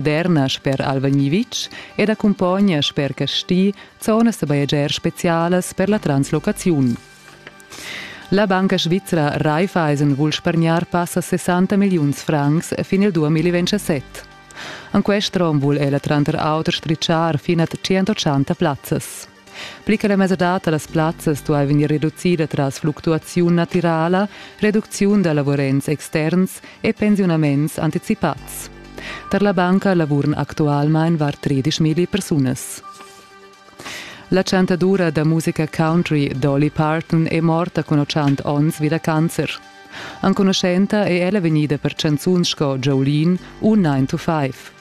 Derna sper Alvagni-Vitg ed accumpogna sper Casti zonas da bajegiar spezialas per la translocaziun. La banca svizra Raiffeisen vul spargnar passa 60 milliuns francs fin il 2027. En quest rom vul ella tranter auter stritschar fin a 180 plazzas. Pli che la mesadad da las plazzas duai vegnir reducida tras fluctuaziun natirala, reducziun da lavurents externs e pensiunaments anticipads. Tar la banca lavuran actualmain var 13 milli persunas. La chantadura da musica country Dolly Parton è morta cun 80 onns vi da cancer. Enconuschenta è ella vegnida per chanzuns sco Jolene u 9 to 5.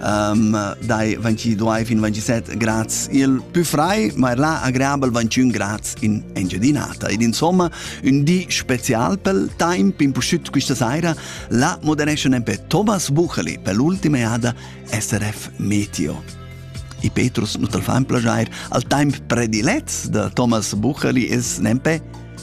um, dai 22 fin 27 grads il più frai, ma er là agreabel 21 grads in Engiadinata. Ed insomma, un di special pel temp in pusciut questa saira, la moderesce nempe Thomas Bucheli per l'ultima eada SRF Meteo. I Petrus nu tal fa un plagiair. Al temp predilets de Thomas Bucheli es nempe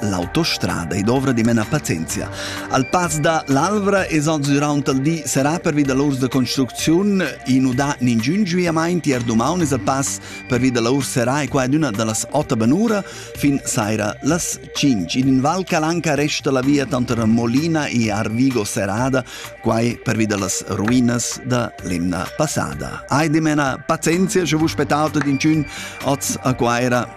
L'autostrada ei dovra di mena pazienzia. Al pass da l'Alvra esans durant il di serà pervi da l'urs da construcziun inu da ningiun giuiamaint ier dumaun es al pass pervi da l'urs serà e qua ed üna da las ota benura fin saira las 5. In in Val Calanca resta la via tanter Molina e Arvigo serrada, quai pervi da las ruinas da l'emna passada. Ai di mena pazienzia, sche vus spetauto d'inciun oz a Quaira